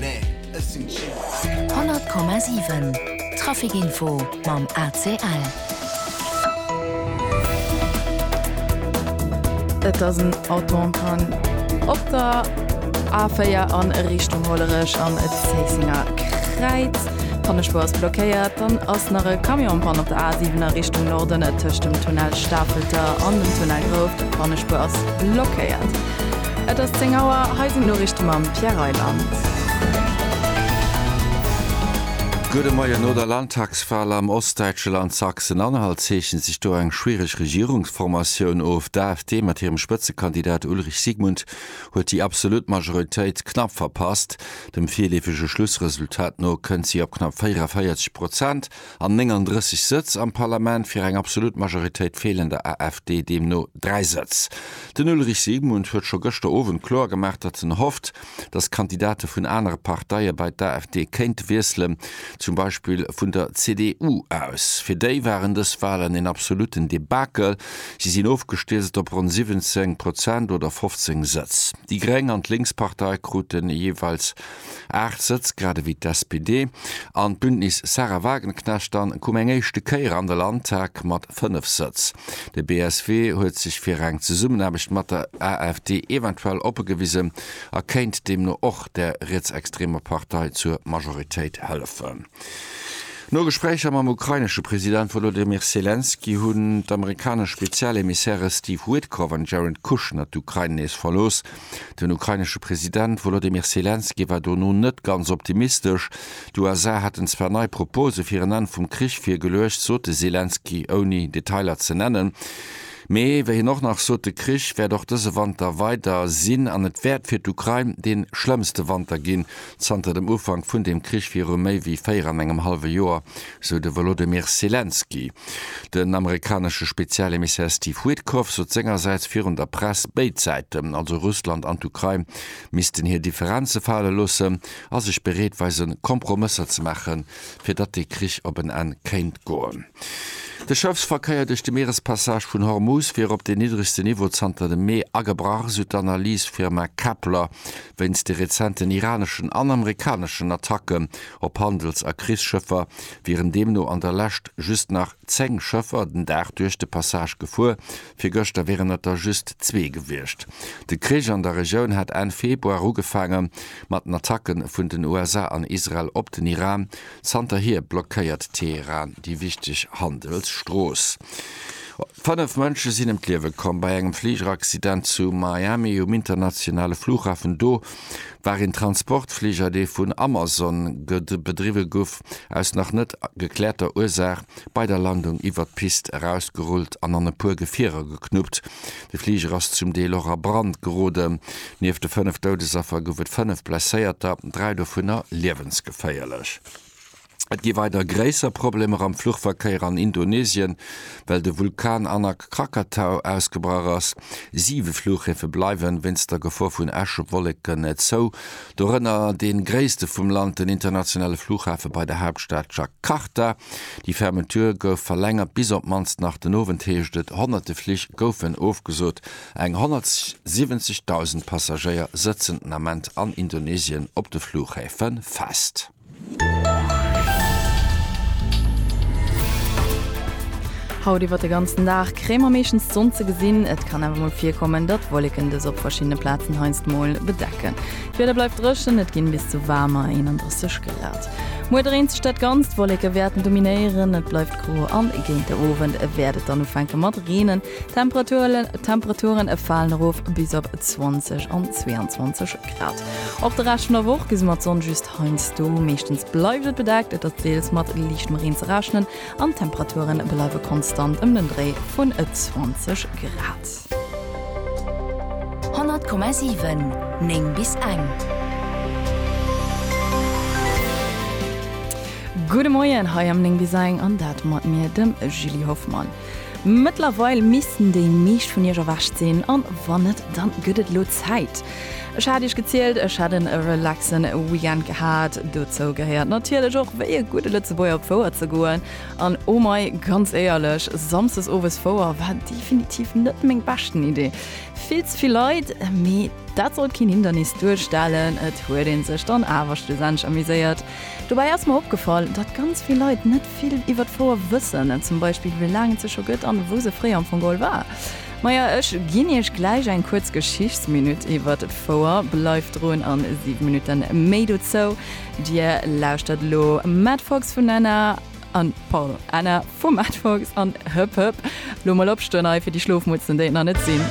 100,7 Trafic Info mam ACL. Et ass en Auto en panne op der A4 a Richtung Hollerech am Zéissenger Kräiz. D'Pannespuer ass blockéiert. Dann ass nach e Camion en panne op der A7 a Richtung Norden tëscht dem Tunnel Stafelter an dem Tunnel Grouft. D'Pannespuer ass blockéiert. Et ass 10 Auer, hei sinn d'Noriichte mam Pierre Reyland. Gudde Moien, No der Landtagswal am ostdäitsche Land Sachsen-Anhalt zeechent sech do eng schwiereg Regierungsformatioun of. D'AfD mat hirem Spëtzekandidat Ulrich Siegmund huet déi absolut Majoritéit knapp verpasst. Dem virleefege Schlussresultat no kënnt si op knapp 44 Prozent. an 39 Sëtz am Parlament, fir eng absolut Majoritéit feelen der AfD deemno dräi Sëtz. Den Ulrich Siegmund huet scho gëschter Owend kloer gemaach, datt en hofft, datt Kandidate vun anere Parteie bei d'AfD kéinte wiesselen, zum Beispill vun der CDU aus. Fir déi waren dës Walen een absoluten Debakel, si sinn ofgestierzt op ronn 17 Prozent oder 15 Sëtz. Déi Gréng an d'Linkspartei kruten jeeweils 8 Sëtz, grad ewéi d'SPD an d'Bündnis Sahra Wagenknecht. Dann koum eng éischte Kéier an de Landtag mat 5 Sëtz. De BSW huet sech fir eng Zesummenaarbecht mat der AfD eventuell oppe gewisen a kéint deemno och der rietsextremer Partei zur Majoritéit hëllefen. No Gespréicher mam ukrainesche President Wolodymyr Selenskyj hunn d'amerikanesch Spezialemissäre Steve Witkoff an Jared Kushner d'Ukrain nees verlooss. Den ukrainesche President Wolodymyr Selenskyj war dono net ganz optimistesch. D'USA hätten zwar nei Propose fir en Enn vum Krich virgeluecht, sot de Selenskyj, ouni Detailer ze nennen. Mee wéi hien och nach sot, de Krich wäert och dëse Wanter weider sinn an et wäert fir d'Ukrain dee schlëmmste Wanter ginn zanter dem Ufank vun deem Krich viru méi wéi véier an engem hallwe Joer. sou de Wolodymyr Selenskyj. Den amerikanesche Spezialemissaire Steve Witkoff sot sengersäits virun der Press, béid Säiten, also Russland an d'Ukrain, missten hir Differenze fale loossen a sech bereet weisen, Kompromësser ze maachen, fir datt dee Krich op en Enn kéint goen. De Schëffsverkéier duerch de Mierespassage vun Hormuz wier op deen niddregste Niveau zanter dem Mee agebrach, sou d'Analysfirma Kpler, wéinst de rezenten iraneschen an amerikaneschen Attacken Op Handels a Krichsschëffer wieren deemno an der Lescht just nach 10 Schëffer den Dag duerch de Passage gefuer, virgëschter wieren et der just zwee gewiescht. De Krich an der Regioun hat Enn Februar ugefaange mat den Attacke vun den USA an Israel op den Iran. Zanterhier blockéiert Teheran déi wichteg Handelsstrooss. Fënnef Mënsche sinn ëm d'Liewe komm bei engem Fligeraccident zu Miami um internationale Flughafen do. war een Transportfliger, dee vun Amazon bedriwwe guff, aus nach net gekläerter Ursaach bei der Landung iwwert d'Pist erausgerullt an an e puer Gefierer geknuppt. De Fliger ass zum Deel och a Brand geroden. Nieft de fënnef Doudesaffer gouf et fënnef Blesséierter, dräi dovunner liewensgeféierlech. Et gi weider gréisser Problemer am Fluchverkéier an Indonesien, well de Vulkan Anak Krakatau ausgebrach ass. Siwe Flughäfe bleiwen wéinst der Gefor vun Äschewolleken zou, dorënner dee gréisste vum Land, den internationale Fluchhafe bei der Haaptstad Jakarta. Déi Fermeture gouf verlängert bis op d'mannst nach den Owend, heescht et. Honnerte Flich goufen ofgesot. Eng 170.000 Passagéier sëtzen den Ament an Indonesien op de Flughäfe fest. Haut iwwer de ganzen Dag kréie mer meeschtens d'Sonn ze gesinn. Et kann awer mol virkommen, datt Wolleken dës op verschiddene Plazen heiansdmol bedecken. D'Wieder bleift dréchen, et ginn bis zu waarmer 31 Grad. Muer dréint sech dat Ganzt, Wolleke wäerten dominéieren, et bleift gro an géint de Owend wäert et dann ufänke mat reenen. D'Temperaturen falen erof bis op 20 an 22 Grad. Och de Rescht vun der Woch gesi mer d'Sonn just heiansdo. Meeschtens bleift et bedeckt, et ass deels mat liichtem Reen ze rechnen an d'Temperature bleiwe konstant ëm den Dréi vun 20 Grad. 100,7 9 bis eng. Gudde Moien hei am 9 bis eng an dat mat mir, dem Julie Hoffmann. Mëttlerweil missten déi meescht vun iech erwächt sinn, an wann net, dann gëtt et elo Zäit. Ech hat iech gezielt, ech hätt en relaxen Weekend gehat. Dozou gehéiert natierlech och wéi e gudde Lëtzebuerger op Fouer ze goen. An oh mei, ganz éierlech, Samsdes owes Fouer war definitiv net meng beschten Idee. Vill ze vill Leit, mee dat sollt keen Hindernis duerstellen, et huet een sech dann awer schlussendlech amuséiert. Dobäi ass mer opgefall, datt ganz vill Leit net vill iwwer d'Fouer wëssen, zum Beispill wéi laang et se scho gëtt an wou se fréier am Fong geholl war. Maja, ech ginn Iech gläich eng kuerz Geschichtsminutt iwwert d'Fouer. Bleift drun a 7 Minutten méi dozou. Dir lauschtert elo Matt Fox vun Anna an, pardon, Anna vum Matt Fox an Hëpp Hëpp. Lo mol opstoen hei fir déi Schlofmutzen, déi et nach net sinn.